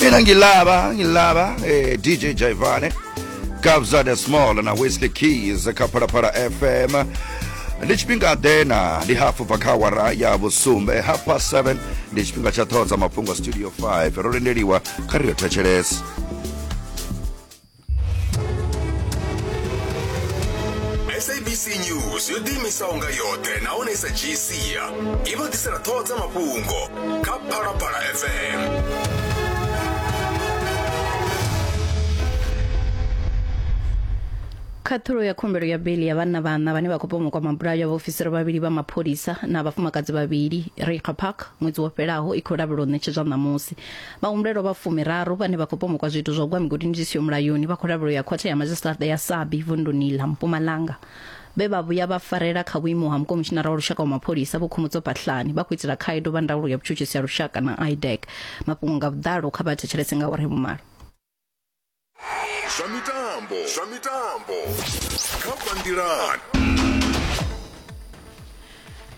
mina ngilaba ngilaba eh, dj jaivane kabza the small na whiskey keys kha phalaphala fm ndi tshifhinga ḓe na ndi hafu bva kha awara ya vhusumbe half past 7 ndi tshifhinga tsha ṱhoho dza mafhungo studio 5 ro lindeliwa kha ri yo thetshelesa sabc news yo ḓiimisa unga yoṱhe nahone i sa dzhii sia i vha ḓisela ṱhoho dza mafhungo kha phalaphala fm khaṱhulo ya khumbelo ya beli ya vhanna vhanna vhane vha khou pomokwa mabulayo ya vhaofisiri vhavhili vha mapholisa na vhafumakadzi vhavhili rixa park ṅwedzi wo fhelaho i khou lavhelwa u ṋetshedzwa ṋamusi vhahumbulelwa vha fumiraru vhane vha khou pomokwa zwiito zwa u gwa migodini zwi siho mulayoni vha khou lavhelwa ya khothe ya madzhisiṱaraṱa ya sabi vunduni ḽa mpumalanga vhe vha vhuya vha farela kha vhuimo ha mukomishinara wa lushaka wa mapholisa vho khomotso pahlani vha khou itela khaedu vha ndaulo ya vhutshutshisi ya lushaka na idec mafhungo nga vhuḓalo kha vha thetshelese nga uri vhumalo zwa mitambo zwa mitambo kha bandilat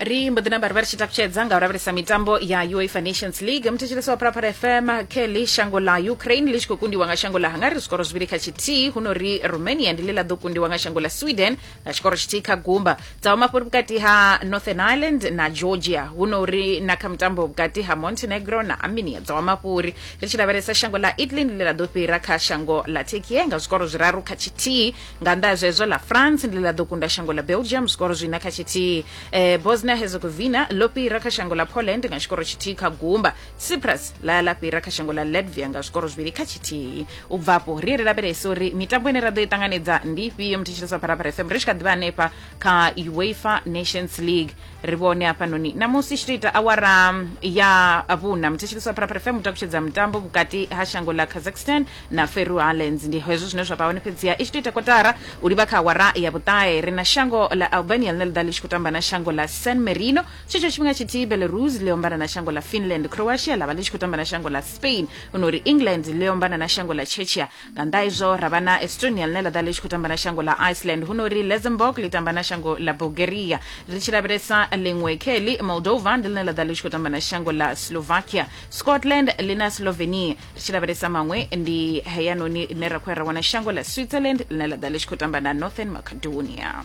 ri mbo ḓi namba ri vha ri tshi takutshedza nga u lavhelesa mitambo ya uefa nations league muthetshelesi wa phalaphala fm kelly shango ḽa ukraine ḽi tshi khou kundiwa nga shango ḽa hungary zwikoro zwivhili kha tshithihi huno ri romania ndi ḽe ḽa ḓo kundiwa nga shango ḽa sweden na tshikoro tshithihi kha gumba dza vha mafhuri vhukati ha northern ireland na georgia hu no uri na kha mutambo vhukati ha montenegro na armenia dza vha mafhuri ri tshi lavhelesa shango ḽa italy ndi ḽe ḽa ḓo fhira kha shango ḽa turkiye nga zwikoro zwiraru kha tshithihi nga nnḓa ha zwezwo ḽa france ndi ḽe ḽa ḓo kunda shango ḽa belgium zwikoro zwina kha tshithihi eh, bosnia herzegovina ḽo fhira kha shango ḽa poland nga tshikoro tshithihi kha gumba cyprus ḽa ya ḽa fhira kha shango ḽa latvia nga zwikoro zwivhili kha tshithihi u bva afho ri ye ri lavhelese uri mitambo ine ra ḓo i ṱanganedza ndi ifhio muthu tshilisa pharapara fm ri tshi kha ḓivha hanefha kha uefa nations league ri vhone hafhanoni namusi tshi to ita awara ya vhuna muthu tshilisa pharapara fm u takutshedza mutambo vhukati ha shango ḽa kazakhstan na feru islands ndi hezwo zwine zwa vha hone fhedziha i tshi to ita kotara u livha kha awara ya vhuṱahe ri na shango ḽa albania ḽine ḽi ḓa ḽi tshi khou tamba na shango ḽa san marino tshetsho tshifhinga tshithihi belarus ḽi ombana na shango ḽa finland croatia ḽa vha ḽi tshi khou tamba na shango ḽa spain huno uri england ḽi ombana na shango ḽa chechia nga nnḓa izwo ra vha na estonia ḽine ḽa ḓa ḽi tshi khou tamba na shango ḽa iceland huno uri luxembourg ḽi tamba na shango ḽa bulgaria ri tshi lavhelesa ḽiṅwe kheli moldova ndi ḽine ḽa ḓa ḽi tshi khou tamba na shango ḽa slovakia scotland ḽi na slovenia ri tshi lavhelesa maṅwe ndi heyanoni ine ra khou ya ra wana shango ḽa switzerland ḽine ḽa ḓa ḽi tshi khou tamba na northern macedonia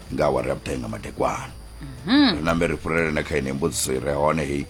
nga awara ya vhuṱahe nga madekwana mhm. ri nambe ri fhurele na kha ine mbudziso i re hone heyi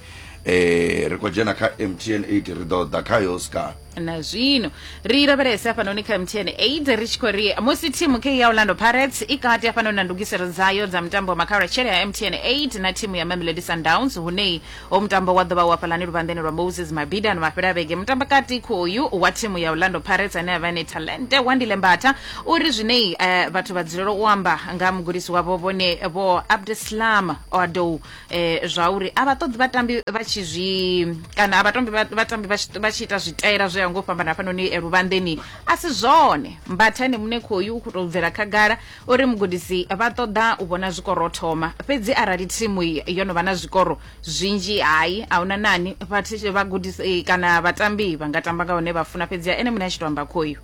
eh ri khou dzhena kha mtn 8 ri ḓo ḓa khayo ska na zwino ri lavhelese hafhanoni kha mtn 8 ri tshi khou ri musi thimu kei ya orlando pirates i kati hafhanoni na ndugiselo dzayo dza mutambo wa makhaula tshele ya mtn 8 na thimu ya mamelodi sundowns hunei Hoyu mutambo wa ḓo vha u hafhalani luvhanḓeni lwa Moses Mabhida ano mafhelo a vhege. Mutambakati khoyu wa thimu ya Orlando Pirates ane a vha ene Talente Wandile Mbatha u ri zwine eh, vhathu vha dzulela u amba nga ha mugudisi wavho vhone vho Abdeslam Oadou eh, zwa uri a vha ṱoḓi vhatambi vha tshi zwi kana a vha tombi vha- vhatambi vha tshi- vha tshi ita zwitaela zwo ya ngo fhambana hafhanoni eh, luvhanḓeni a si zwone. Mbatha ene muṋe khoyu u khou tou bvela khagala O ri, Mugudisi, vha ṱoḓa u vhona zwikoro o thoma. Fhedzi arali thimu yo no vha na zwikoro zwinzhi, hai, a hu na nani, vha, vhagudisi kana vhatambi vha nga tamba nga hune vha funa, fhedziha ene muṋe a tshi tou amba khoyu.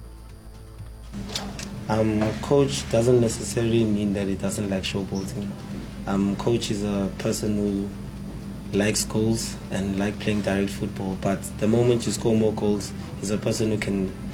Um, coach doesn't necessarily mean that he doesn't like showboating. Um, coach is a person who likes goals and like playing direct football. But the moment you score more goals, he's a person who can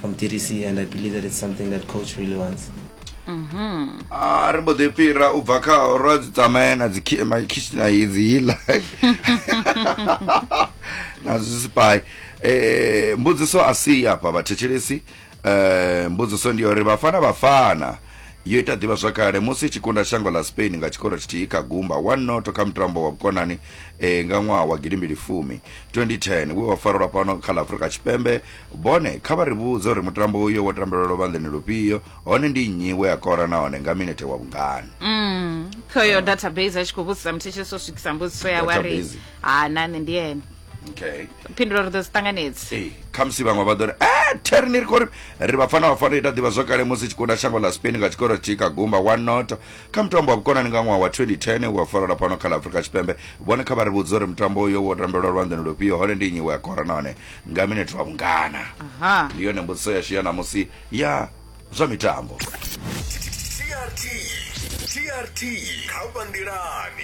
from DDC and I believe that it's something that coach really wants. Mm-hmm. Ah, ri mbo ḓi fhira u bva kha ro dzi tsamaya na dzikitshina idzi hiḽa na zwisipai um eh, mbudziso a si afha vhathetshelesi um eh, mbudziso ndi uri vhafana vhafana yo ita ḓivha zwakale musi tshi kunda shango ḽa spain nga tshikoro tshithihi kha gumba one noto kha mutambo wa vhukonani um nga ṅwaha wa gidimbili fumi 2010 we wa farelwa fhano kha ḽa afurika tshipembe Bone, kha vha ri vhudze uri mutambo uyo wo tambelwa luvhanḓeni lufhio, hone ndi nnyi we a kora nahone nga minethe wa vhungani. Mm, khoyo database a tshi khou vhudzisa muthetshelesi o swikisa mbudziso yawe a ri Database. ha na nṋe ndi ene Okay. phindulo ri ḓo dzi ṱanganedzi Ee, khamusi vhaṅwe vha ḓo ri e theri ni ri khou ri ri vhafana vhafana ita ḓivha zwo kale musi tshi kunda shango ḽa spain nga tshikoro tshi kha gumba wa noto kha mutambo wa vhukonani nga ṅwaha wa 2010 wa farelwa fhano kha ḽa afurika tshipembe vhone kha vha ri vhudze uri mutambo uyo wo tambelwa lwanḓani lufhio hone ndi nnyi we a kora nahone nga minetwa vhungana Aha. ndi yone mbudziso yashu ya ṋamusi ya zwa mitambo trt trt kha vha nḓilani